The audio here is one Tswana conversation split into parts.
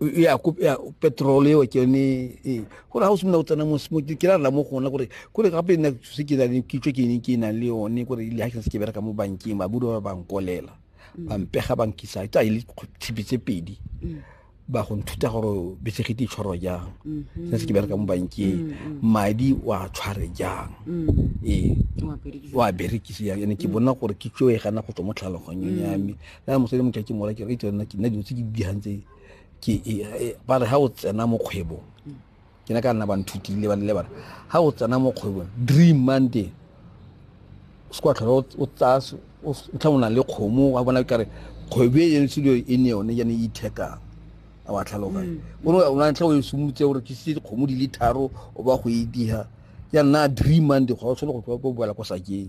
ya petrol eo ke yone ee gore ga o simolola o tsena mo ke ra rela mo gona gore kore gape nna se ke nang kitso ke ne ke nang le yone gore le ga ke se ke bereka mo bankeng babudu ba bankolela mm. ba mpega ba nkisa tsa ile tshipi tse pedi mm. ba go nthuta gore besegete tshwaro jang mm-hmm. se se ke bereka mo bankeng mm-hmm. madi wa tshware jang mm. ee wa berekise jang ene ke bona gore kitso e gana go tswa mo tlhaloganyong ya me ya motho le motho ke mola ke re itse nna ke nna dilo tse ke digang tse ke e, e, ba re ha o tsena mo kgwebong ke ne ka nna ba nthutile ba le bana ha o tsena mo kgwebong dream monday o se kwa tlhola o tsaya o tlha o na le kgomo wa bona kare kgwebo e yone studio e ne yone yane e ithekang a wa tlhaloga mm. o ne o na tlha o e sumutse gore ke se kgomo di le tharo o ba go e diha ya nna dream monday go tshwana go tloa go boela kwa sakeng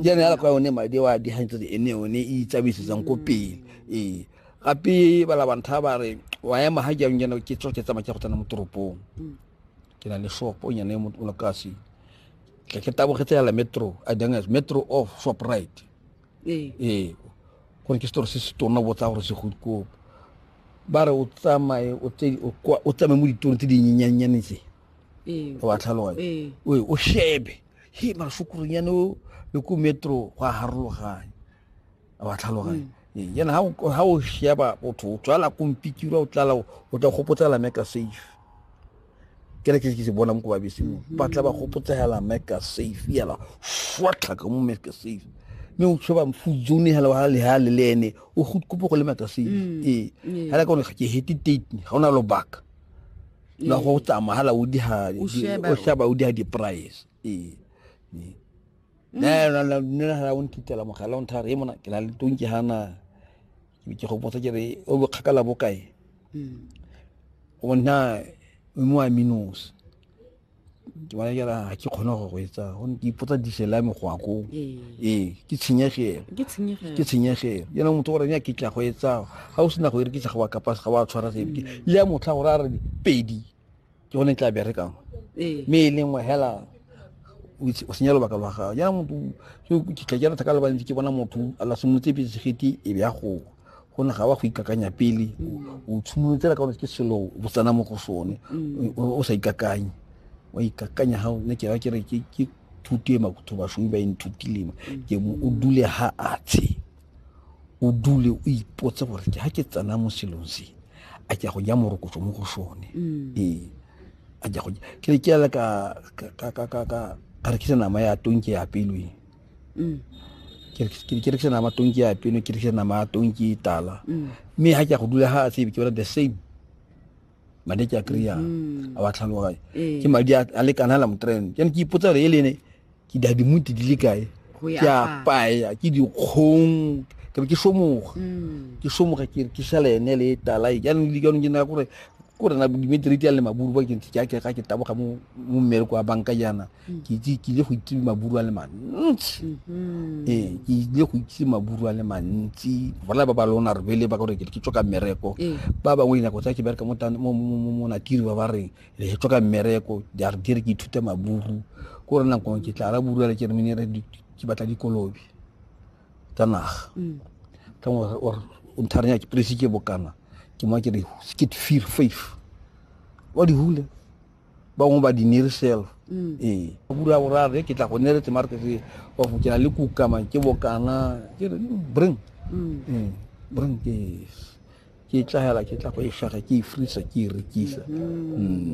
jaana yala kwa yone madi wa digantsho tse ene one e itsabaisetsang ko pele ee gape ba labantha ba re wa ema ga jang jana ke tsoke tsamaya ke go tsena mo toropong mm. ke na le shopo o nyane mo lokasi ke ke tabogetse yala metro a dang as metro of shop right ee ee gore ke store se se tona botsa gore se go ko ba re o tsamaye o tsamaye mo ditorong tse dinyenyanyaneng tse ee. wa tlhaloganya ee. oe o shebe he masokorong yane o le ko metro go a harologanya wa tlhaloganya mm. yana ha o sheba botho o tswala kompikirwa o tlala o tla gopotsela meka safe ke re ke ke se bona mo ko babeseng mm-hmm. ba tla ba gopotsela meka safe yala fwatlha ka mo meka safe mme o tshoba mfudzone hela wa le ha le le ene o go kopo go le maka se mm. ee hela ka o ga ke hete date ga ona lobaka la go tsamaya hala o diha o sheba o diha di-price ee ne na hala o nkitela mogala o nthare e mona ke na le tong ke hana ke go botsa ke re o bo kgakala bokae o na mo a minus ke bona jara ga ke kgone go go etsa go ke ipotsa diesel ya megwako ee ke tshenyegelo ke tshenyegelo yena motho gore ya ke tla go etsa ga o sena go ere ke tla go wa kapa ga wa tshwara se mm. le ya motlha gore a re pedi ke gone tla berekang mme e lengwe hela o senya lobaka lwa gago yana motho ke tla ke rata ka lebantsi ke bona motho a la simolotse petse segeti e be ya goa gonne ga wa go ikakanya pele mm. o tshimolotsela ka ke selo o tsena mo go sone mm. o sa ikakanye wa ikakanya ga ne ke ke re ke thuto e makutho bashomi ba e nthutilema mm. ke mo o dule ha atshe o dule o ipotse gore ke ga ke tsena mo selong se a ke go ja morokotso mo go sone ee a ke go ke ke ka ka ka ka ka rekisa nama ya tonke ya pelweng mm. ke rekisa nama tonki ya peno ke rekisa nama tonki e tala mm. mme ha ke go dula ha a tsebe ke bona the same madi ke a kry-a mm-hmm. a wa tlhaloganye eh. ke madi a lekana la motrene ke ne ke ipotsa gore e lene ke dadimuti di le kae ke a paya ke dikgong ke be ke somoga mm. ke somoga ke ke sala ene le talai jaanong le jaanong ke naya gore ko rena dimeteriti ya le maburu ba ke ntse ke a ke ga ke taboga mo mmereko wa banka jaana ke itse ke ile go itse maburu a le mantsi mm-hmm. ee ke ile go itse maburu a le mantsi bola ba ba lona re bele ba gore ke tswa ka mmereko ee. ba bangwe dinako tsa ke bereka mo natiri ba ba reng re tswa ka mmereko di a re dire ke ithute maburu ko re nako ke tla ra buru le ke re menere ke batla dikolobe tsa naga mm. ka ngwe or ntharenya ke presi ke bokana ke mo ke re skit fear faith wa di hule bangwe ba di near self mm. ee bura ya borare ke tla go nere tse mare ke se wa go kena le kukama ke bokana ke re mm, bring mm. ee bring ke ke tla hela ke tla go e shaga ke e frisa ke e rekisa mm-hmm. mm.